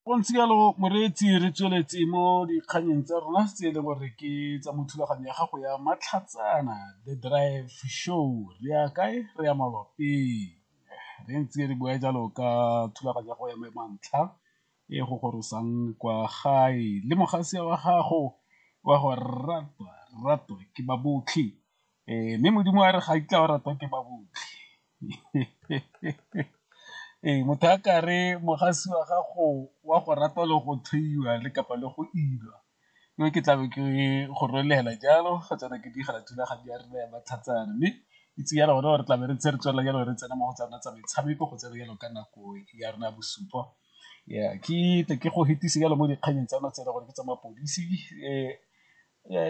Go ntse jalo moreetsi re tsweletse mo dikgannyeng tsa rona tse e le gore ke tsa mo thulaganyo ya gago ya Matlhatsana The Drive Show, re ya kae re ya malwapeng re ntse re bua jalo ka thulaganyo ya go ya mo mantlha e go gorosang kwa gae le mogasea wa gago wa go ratwa ratwa ke ba botlhe Ee, mme modimo a re ga itla o ratwa ke ba botlhe ee motho a ka re mogasi wa gago wa go rata le go theiwa le kapa le go ilwa yo ke tlabe ke go rolela jalo ga tsena ke digela thulaganyo ya rena ya matlhatsana mme itse ya rona gore tlabe re tse re tswelela jalo re tsena mo go tsena tsa metshameko go tsena jalo ka nako ya rona bosupa ya ke tle ke go hetise jalo mo dikganyeng tsa notse gore ke tsa mapodisi um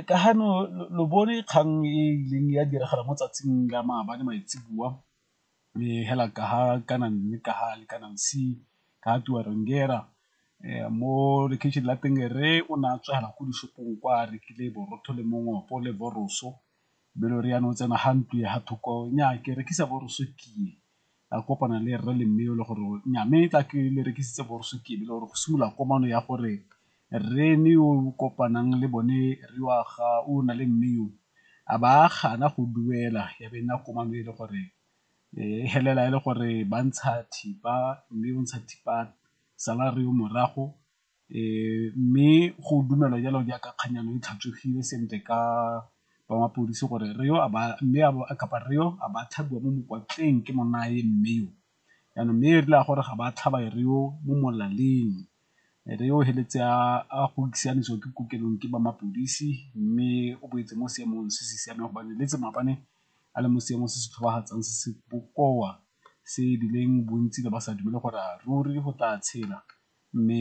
Ka ga no lo bone kgang e ileng ya diragala mo tsatsing la maabane maitseboa hela ka ha kana mme ka ha le kana ka Tuwa Rangera mo lekheisheneng la teng rre o ne a tswa fela ko di-shop-ong kwa a rekile borotho le mongwapo le wors-o be e le gore jaanong o tsena ga ntlo ya ga thoko nnyaa ke rekisa wors-o ke ye a kopana le rre le mme le gore nya mme tla ke le rekisitse borso ke le gore go simolola komano ya gore rre ne o kopanang le bone re wa ga o na le mme yo a ba gana go duela ya be nna komano e le gore e helela e le gore ba ntsha thipa mme o ntsha thipa salary yo morago Mme go dumelwa jalo jaaka kgannyana e tlhatswegile sentle ka ba mapodisi gore re yo a ba mme kapa re yo a ba tlhabiwa mo mokwatleng ke monna a e mme yo. Jaanong mme e rile a gore ga ba tlhaba e re yo mo molaleng, e re yo feleletse a go siamisiwa ke kokelong ke ba mapodisi mme o boetse mo seemong se se siameng gobane e leetse maabane a le mo seemong se se tlhobafatsang se se bokoa se e bileng bontsi ne ba sa dumele gore ruri go tla tshela. Mme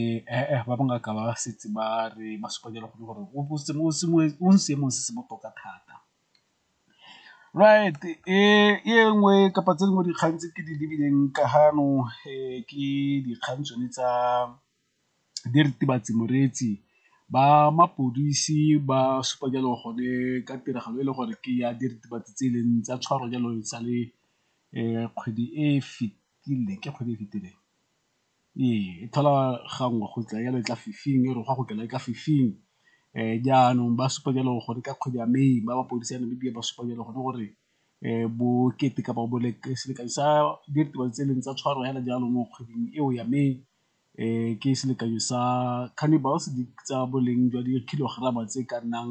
ba bangaka ba setse ba re ba supa jalo gone gore o mo seemong se se botoka thata. Right e nngwe kapa tse dingwe dikgang tse ke di lebileng ka ga jaanong ke dikgang tsone tsa diritibatsi moretse, ba mapodisi ba supa jalo gone ka tiragalo e le gore ke ya diritibatsi tse e leng tsa tshwarwa jalo e sale kgwedi e fitileng, ke kgwedi e fitileng? Ee, e tholwa gangwe go tla jalo e tla fifing e re gwa go kena e tla fifing jaanong ba supa jalo gore ka kgwedi ya May ba mapodisa a Namibia ba supa jalo gone gore bokete kapa selekanyo sa diritibatsi tse e leng tsa tshwaro fela jalo mo kgweding eo ya May ke selekanyo sa cannibals tsa boleng jwa di-kilogram-a tse ka nnang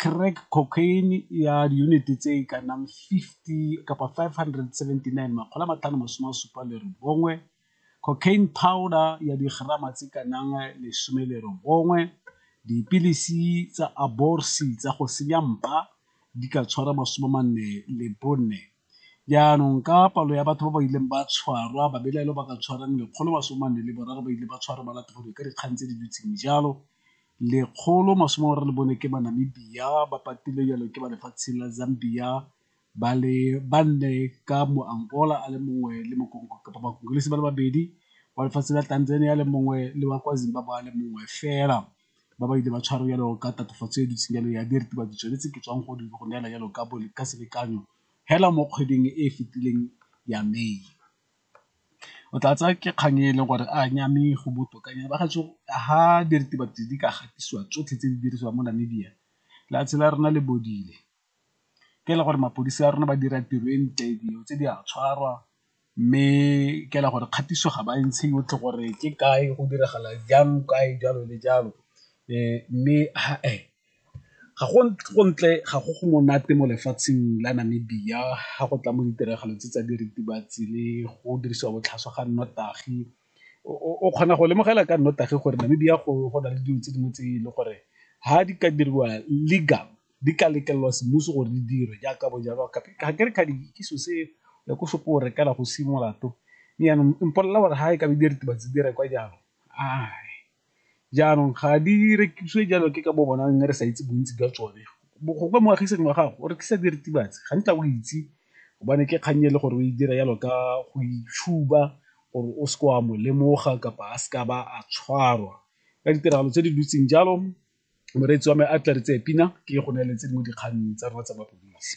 Crack cocaine ya diyuniti tse e ka nnang 50 kapa 579, cocaine powder ya digerama tse e ka nnang 19, dipilisi tsa Aborsi tsa go senya mpa di ka tshwara 44. Jaanong ka palo ya batho ba ba ileng ba tshwarwa, babelaelwa ba ka tshwarang 143 ba ile ba tshwarwa ba latofadiwa ka dikgang tse di dutseng jalo. 124 ke Banamibia ba patilwe jalo ke ba lefatshe la Zambia ba le banne ka Moangola a le mongwe le Bakongolesi ba le babedi, wa lefatshe la Tanzania a le mongwe le wa kwa Zimbabwe a le mongwe fela ba ba ile ba tshwarwa jalo ka tatofatso e e dutseng jalo ya diritibatsi tsone tse ke tswang go di go neela jalo ka selekanyo hela mo kgweding e e fetileng ya May. o tla tsaya ke kgang e leng gore a nya mme go botoka ha diritibatsi di ka gatisiwa tsotlhe tse di dirisiwang mo Namibia lefatshe la rona le bodile. Ke e le gore mapodisi a rona ba dira tiro e ntle dilo tse di a tshwarwa mme ke e le gore kgatiso ga ba e ntshe yotlhe gore ke kae go diragala jang kae jalo le jalo mme . Ga go ntle ga go go monate mo lefatsheng la Namibia ga go tla mo ditiragalo tse tsa diritibatsi le go dirisiwa botlhaswa ga nnotagi, o kgona go lemogela ka nnotagi gore Namibia go na le dilo tse dingwe tse e le gore ga di ka diriwa legal di ka letlelelwa semmuso gore di dira jaaka bo jalo ga ke re kgadi ke selo se ya ko shop-ong o rekela go se molato jaanong mpolelela gore ga e ka ba diritibatsi di rekwa jalo . jaanong ga di rekisiwe jalo ke ka bo bona mme re sa itse bontsi jwa tsone gongwe moagisane wa gago o rekisa diritibatsi ga ntla o itse gobane ke kgang e le gore o e dira jalo ka go itshuba gore o seke wa mo lemoga kapa a seka ba a tshwarwa ka ditiragalo tse di dutseng jalo moreetsi wa me a tla re tseye pina ke go neeletse mo dikgang tsa rona tsa mapodisi.